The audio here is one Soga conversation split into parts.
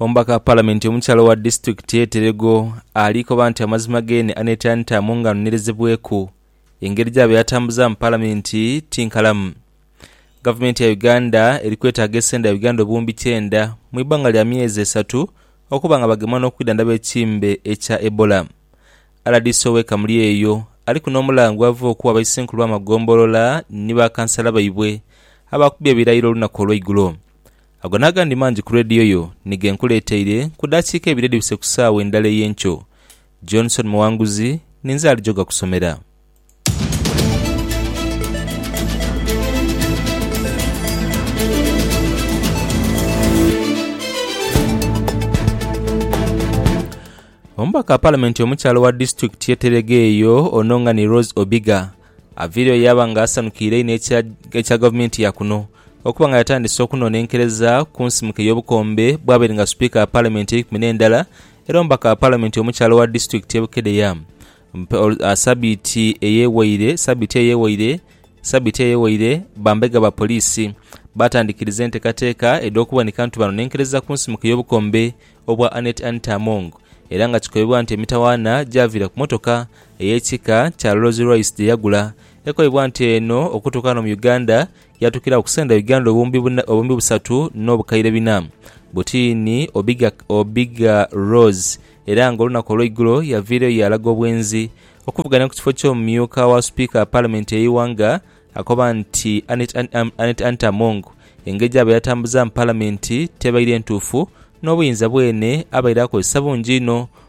Omubaka wa Palamenti omukyala owa disitulikiti ye Terego ali koba nti amazima geene aneetera ntaamu nga anonerezebweku. Engeri gyaba eyatambuzaamu Palamenti ti nkalamu. Gavumenti ya Uganda eri kwetaaga esente dha Uganda obuwumbi kyenda mu ibanga lya myezi esatu okuba nga bagemwa n'okwidhandhaba ekimbe ekya Ebola. Rdc owe Kamuli eyo aliku n'omulango gwava okuwa abaisenkulu b'amagombolola ni ba kansala baibwe abaakubye ebirayiro olunaku olweigulo. Ago n'agandi mangi ku leediyo yo ni ge nkuleeteire ku daakiika ibiri edhibise ku saawa endala ey'enkyo. Johnson Muwanguzi ninze ali jogakusomera. Omubaka wa Palamenti omukyala owa disitulikiti y'e Terega eyo ono nga ni Rose Obiga, Aviireyo yaaba nga asanukiire inho ekya gavumenti ya kuno okuba nga yatandise okunonenkereza ku nsimuka ey'obukombe bw'abaire nga Sipiika wa Palamenti eikumi n'endala era omubaka wa Palamenti omukyala owa disitulikiti ye Bukedea sabiiti eyewaire sabiiti eyewaire bambega ba poliisi baatandikiriza entekateka edh'okuboneka nti banonenkereza ku nsimuka ey'obukombe obwa Annet Anita Among era nga kikobebwa nti emitawaana gyaviira ku motoka ey'ekika kya Rolls Royce gye yagula ekoibwa nti eno okutuuka ghano mu Uganda yaatukira agho ku sente Uganda obuwumbi busatu n'obukaire bina. Butiini Obiga Rolls era nga olunaku olw'eigulo yaviireyo yaalaga obwenzi okuvuganya ku kifo ky'omumyuka wa Sipiika wa Palamenti y'eighanga akoba nti Annet Anita Among engeri gyabaire atambuzaamu Palamenti tebaire ntuufu n'obuyinza bwene abaire akozesa bungi inho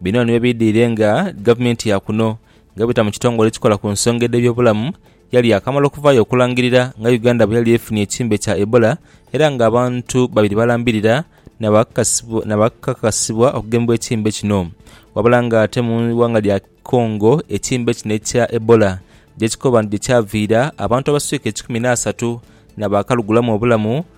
Bino nibyo biidhwire nga gavumenti ya kuno nga bwebita mu kitongole ekikola ku nsonga edh'ebyobulamu yali yaakamala okuvaayo okulangirira nga Uganda bweyali efunye ekirmbe kya Ebola era nga abantu babiri balambirira nabakakasibwa okugemebwa ekirmbe kino wabula nga ate mu ighanga lya Congo ekirmbe kino ekya Ebola gyekikoba nti gyekyaviira abantu abaswika ekikumi n'asatu nabakalugulamu obulamu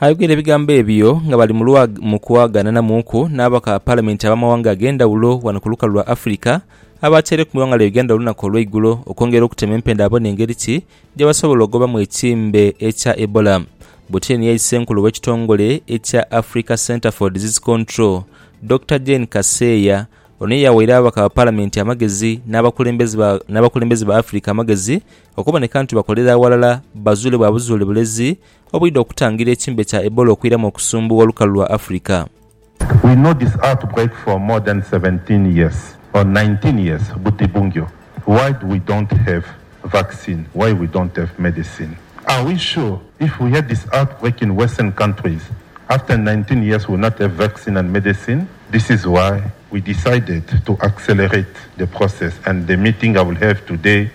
Aye bwire ebigambo ebyo nga bali mu kwagananamuuku n'abaka Palamenti ab'amawanga ag'endhawulo ghano ku lukalu lwa Afrika abaataireku mu ighanga lya Uganda olunaku olweigulo okwongera okutema empenda babone engeri ki gyebasobola ogobamu ekimbe ekya Ebola. Buthyeni yali Ssenkulu w'ekitongole ekya Africa Centre for Disease Control, Dokita Jane Kaseya. Ono ye yawaire ababaka ba Palamenti amagezi n'abakulembeze ba Afrika amagezi okuboneka nti bakolera aghalala bazuule bwa buzuule bulezi obwidha okutangira ekimbe kya Ebola okwiramu okusumbuwa olukalu lwa Africa.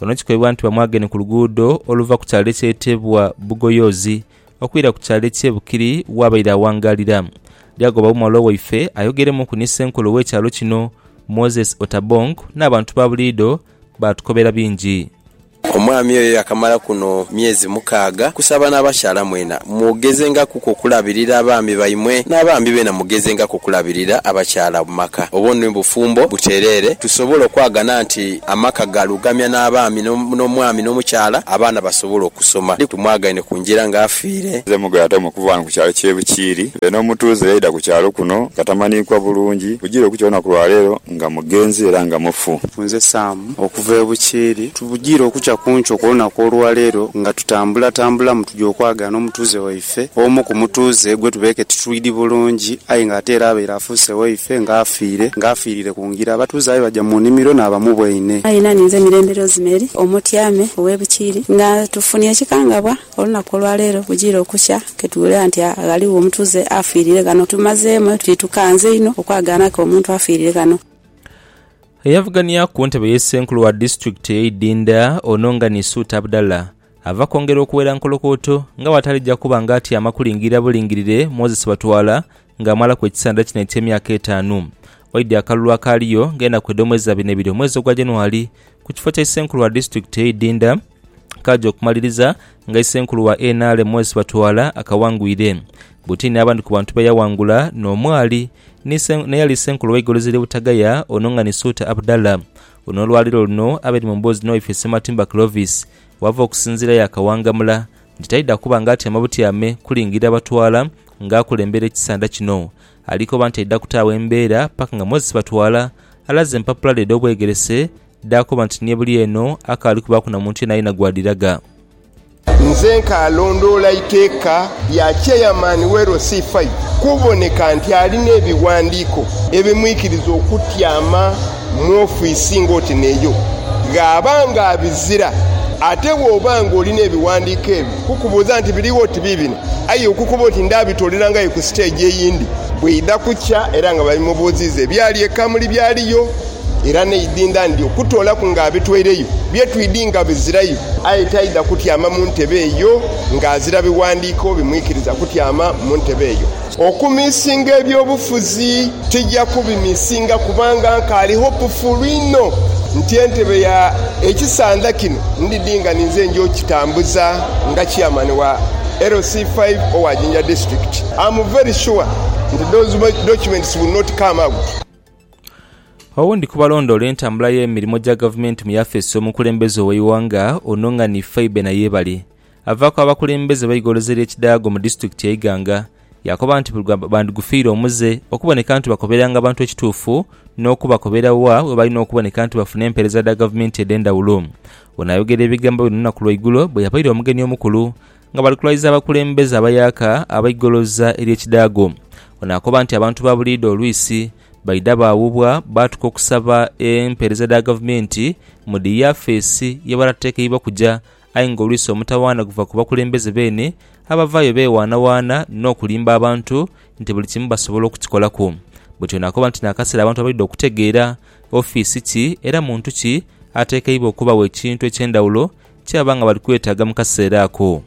Ono kikoibwa nti bamwagenhe ku luguudo oluva ku kyalo ekyetebwa Bugoyozi okwira ku kyalo ekye Bukiri wabaire awangaalira. Lyagobawo mwalwa waife ayogeremuku ni senkulu we kyalo kino Moses Otabong n'abantu ba buliido baatukobera bingi. Omwami oyo yakamala kuno myezi mukaaga. Kusaba n'abakyala mwena mwogezengaku ku okulabirira abaami baimwe, n'abaami beena mugezengaku okulabirira abakyala mu maka, obwo ni bufumbo butereere. Tusobole okwagana nti amaka gaalugamya n'abaami n'omwami n'omukyala abaana basobola okusoma. Ndi tumwagaine ku ngira ng'afiire. Nze Mugayo ate omukuvu ghano ku kyalo ky'e Bukiiri. Nze n'omutuuze eyaidha ku kyalo kuno nga tamaniikwa bulungi, bugire okukya olunaku lwa leero nga mugenzi era nga mufu. Nze Sam okuva e Bukiiri. Bugire okukya ku nkyo kw'olunaku olwa leero nga tutambulatambulamu tuja okwagaana omutuuze waife. waife omu ku mutuuze gwe tubeeke titwidi bulungi aye ng'ate era abaire afuuse waife nga afiire nga afiirire ku ngira. Abatuuze aye baja mu nimiro n'abamuboine. Aye na ninze Mirembe Rosemary Omotyame ow'e Bukiiri nga tufunye ekikangabwa olunaku olwaleero bujiire okukya ketuwulira nti ghaligho omutuuze afiirire ghano. Tumazeemu etuti tukanze inho okwagaanaku omuntu afiirire ghano. Eyavugania ku ntebe y'e Ssenkulu wa disitulikiti ey'e Idinda, Ononga Nisuuta Abdallah Ava kwongera okuwera nkolokooto nga bw'atalija kuba nga atyama kulingirira bulingirire Moses Batwala ng'amalaku ekisanda kino eky'emyaka etaanu. Waidhi akalulu akaaliyo ng'enaku edh'omwezi za bina ebiri omwezi ogwa January ku kifo kya Isenkulu wa Disitulikiti ey'e Idinda kaaja okumaliriza nga Isenkulu wa nrm Moses Batwala akawangwire buti n'abandi ku bantu be yawangula n'omwali ni n'eyali Isenkulu w'eigolozi ly'e Butagaya Onongani Suuta Abdallah. Ono olwaleero luno abaire mu mboozi n'owefiisi Matimba Clovis Wava okusinziira yaakawangamula nti taidha kuba ng'atyama butyame kulingirira batwala ng'akulembera ekisanda kino. Ali koba nti aidha kutaagho embeera paka nga Moses Batwala alaze empapula dhe edh'obwegerese dh'akoba nti ni ebuli eno akaali kubaaku na muntu yeenayena gw'adhiraga. Nze nkaalondoola iteeka lya Chairman w'e LC5 kuboneka nti alina ebiwandiiko ebimwikiriza okutyama. mu ofiisi ng'oti n'eyo gh'aba ng'abizira. Ate bw'oba ng'olina ebiwandiiko ebyo, kukubuuza nti, Birigho oti biibino? Aye okukoba oti, Ndaabitooleranga yo ku siteegi eyindi. Bwidha kukya era nga babimubuuziiza ebyali e Kamuli byaliyo, era n'eidhindha ndi okutoolaku ng'abitweireyo, bye twidhi nga bizirayo. Aye taidha kutyama mu ntebe eyo ng'azira biwandiiko bimwikiriza kutyama mu ntebe eyo. Okumisinga eby'obufuzi tija kubimisinga kubanga nkaali hopufuulu inho nti entebe ya ekisandha kino ndidhi nga ninze nja okitambuza nga chairman wa LC five owa Jinja district. Am very sure nti those documents will not come out. Owundi ku balondoola entambula y'emirimo gya gavumenti mu yafeesi y'omukulembeze ow'eighanga, Onong'ani Phoebe Nayebale, avaaku abakulembeze b'eigoloze ly'ekidaago mu disiturikiti e Iganga yaakoba nti buli gwa bandigufiire omuze okuboneka nti bakoberanga abantu ekituufu n'okubakobera wa webalina okuboneka nti bafuna empeereza dha gavumenti edh'endhawulo. Ono ayogera ebigambo bino olunaku lwaigulo bweyabaire omugeni omukulu nga bali kulwaiza abakulembeze abayaaka ab'eigoloza ery'ekidaago. Ono akoba nti abantu ba buliidho olwisi baidha baawubwa baatuka okusaba empeereza dha gavumenti mu dhi yafeesi ye bataatekeibwa kuja Aye ng'olwisa omutawaana guva ku bakulembeze beene abavaayo beewaanawaana n'okulimba abantu nti buli kimu basobola okukikolaku. Bwetyo naakoba nti n'akaseera abantu abaidha okutegeera ofiisi ki era muntu ki ateekeibwa okubagho ekintu eky'endhawulo kyebaba nga bali kwetaaga mu kaseera ako.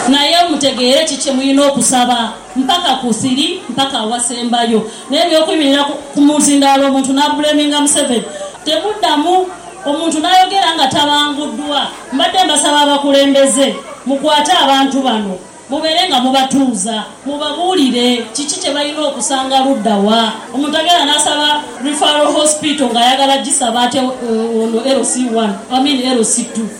Naye mutegeere ki kye mulina okusaba, mpaka ku thiri, mpaka awasembayo. Naye eby'okwimiira ku muzindaalo omuntu n'abuleminga Museveni temuddamu. Omuntu n'ayogera nga tabanguddwa. Mbadde mbasaba abakulembeze mukwate abantu bano mubeere nga mubatuuza mubabuulire kiki kye balina okusanga ludda wa. Omuntu agenda n'asaba Referral Hospital ng'ayagala gisaba ate ono LC one, I mean LC two.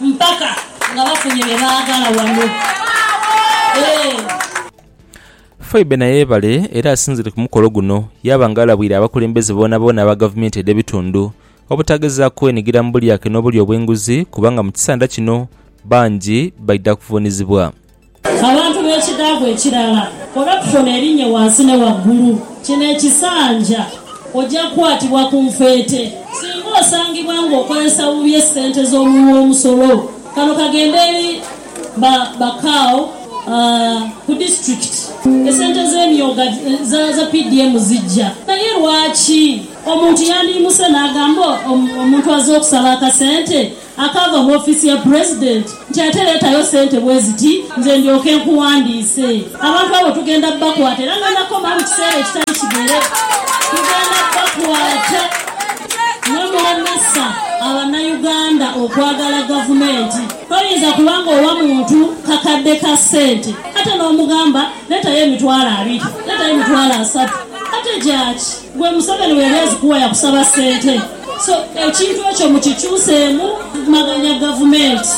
Mpaka nga bafunye bye baagala wano. Eeh. Phoebe na yeebale era asinzire ku mukolo guno yaaba nga alabwire abakulembeze boonaboona aba gavumenti edh'ebitundu obutagezaaku kwenigira mu bulyake n'obulya obw'enguzi kubanga mu kisanda kino bangi baidha kuvuunizibwa. Abantu b'ekidhaavwa ekirala koona kufona erinye wansi ne waggulu. Kino ekisanja oja kukwatibwa ku nfeete singa osangibwa nga okozesa bubi esente z'omuwi w'omusolo. Kano kagenda eri ba ba Cow ku disitulikiti. Esente z'emyooga za PDM zijja. Naye lwaki? Omuntu yandiimuse n'agamba omuntu azze okusaba akasente Akaava mu ofiisi ya Pulezidenti nti ate leetayo ssente bwe ziti nze ndyoke nkuwandiise. Abantu abo tugenda bakwata era nga nakoma mu kiseera ekitali kighere tugenda bakwata mwe mulemesa Abanayuganda okwagala Gavumenti. Toyinza kuba ng'owa muntu kakadde ka ssente ate n'omugamba leetayo emitwalo abiri, leetayo emitwalo asatu. Ate gyaki? Ggwe Museveni bwe yali azikuwa yakusaba ssente? So ekintu ekyo mukikyuseemu kumaganya gavumenti.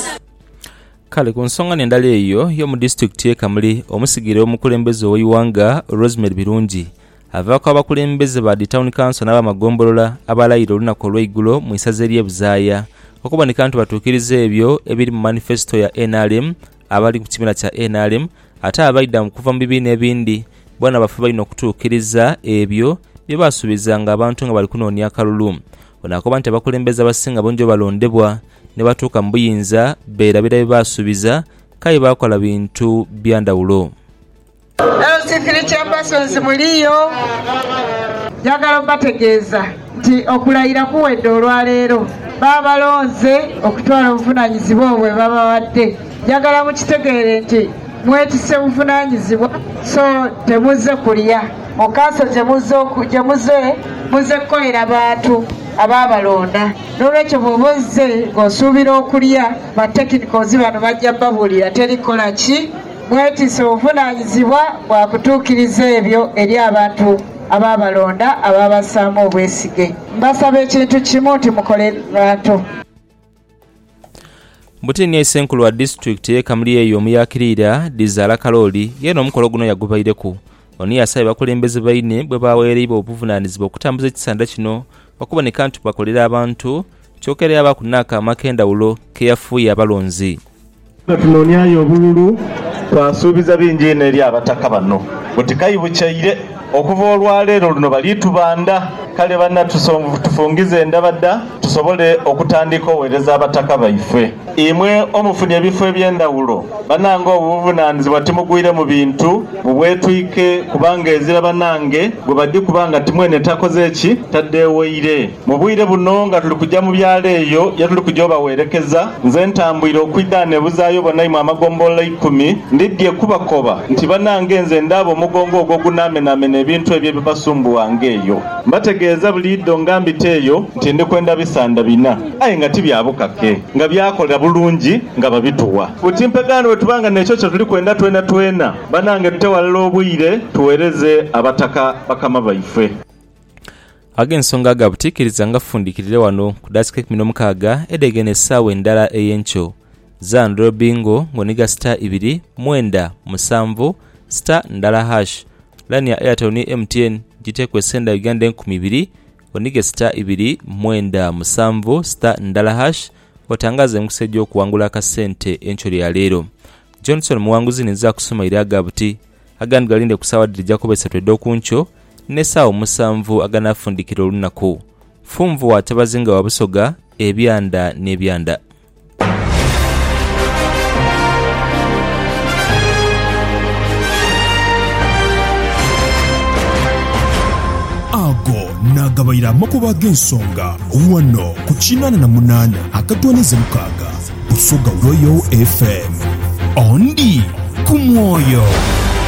Kale ku nsonga n'endala eyo y'omu disitulikiti y'e Kamuli, omusigire w'omukulembeze ow'eighanga Rosemary Birungi avaaku abakulembeze ba dhi tawuni kanso n'abamagombolola abalayira olunaku olw'eigulo mu isaza ery'e Buzaaya okuboneka nti batuukiriza ebyo ebiri mu manifesito ya nrm Abali ku kibiina kya nrm ate abaidha okuva mu bibiina ebindi bona bafuba inho okutuukiriza ebyo bye baasuubizanga abantu nga bali kunoonia akalulu. Ono akoba nti abakulembeze abasinga bungi bwe balondebwa ni batuuka mu buyinza beerabira bye baasuubiza k'aye baakola bintu bya ndhawulo. LC3 Chambersons muli yo. Njagala obategeeza nti okulayira kuwedde olwaleero. Baba balonze okutwala obuvunanyizibwa obwo bwebabawadde. Njagala mukitegeere nti mwetisse buvunanyizibwa so temuzze kulya. Mu kanso gye muze, muzze kukolera bantu abaabalonda. N'olwekyo bw'oba ozze ng'osuubira okulya, ba technicals bano bajja babuulira teri kukola ki? mwetiise obuvunaanyizibwa bwa kutuukiriza ebyo eri abantu abaabalonda abaabassaamu obwesige. Mbasaba ekintu kimu nti mukole bantu. Butini ye Ssenkulu wa disitulikiti ye Kamulyeeyo Muyakiriira Dhizaala Kalooli yeena omukolo guno yagubaireku. Ono yasabye abakulembeze baine bwe baawereibwa obuvunaanizibwa okutambuza ekisanda kino okuboneka nti bakolera abantu kyoka era yaabaaku n'akaama ak'endhawulo ke yafuuye abalonzi. Nga tunooniayo obululu, twasuubiza bingi inho eri Abataka bano buti kaibukyaire okuva olwaleero luno bali tubanda. Kale bana tufungize endabada tusobole okutandika owereza Abataka baife. Imwe omufunye ebifo ebyendawulo banange obwo buvunanizibwa timugwire mu bintu mu bwetwike kubanga ezira banange gwebadikuba nga timwene takoze ki? Tadeeweire. Mu bwire buno nga tuli kuja mu byalo eyo ye tuli kuja obawerekeza, nze ntambwire okwidha nebuzaayo bonaimwe amagombolola eikumi, ndidhie kubakoba nti banange nze ndaaba omugongo ogwo ogunaamenaamena ebintu ebyo ebibasumbuwa nga eyo. Mbategeeza buliidho nga mbiteeyo nti ndi kwenda bisanda bina, aye nga ti bya bukake, nga byakola bulungi nga babituwa. Buti mpegaano bwe tuba nga n'ekyo kye tuli kwenda twenatwena, banange tute ghalala obwire tuweereze Abataka bakama baife. Ag'ensonga aga butiikiriza ngafundikirire ghano ku dakiika eikumi n'omukaaga edhegeine essaawa endala ey'enkyo. Zaa ndhula bingo nga oniga sita ibiri mwenda musanvu sita ndala hash. Laini ya Airtel ni MTN giteku esenda Uganda enkumi ibiri onige sita ibiri mwenda musanvu sita ndala hash otangaaze emikisa egy'okuwangula akasente enkyo lya leero. Johnson Muwanguzi ninze akusumaire aga buti. agandi galinde ku saawa dhiri jakuba isatu edh'oku nkyo n'esaawa omusanvu aganaafundikira olunaku. Funvu wa Kyabazinga wa Busoga, Ebyanda n'Ebyanda. Ago naagabaire amakubo ag'ensonga ghano ku kinaana na munaana akatwaniza mukaaga. Busoga Royal FM. Ondi ku mwoyo.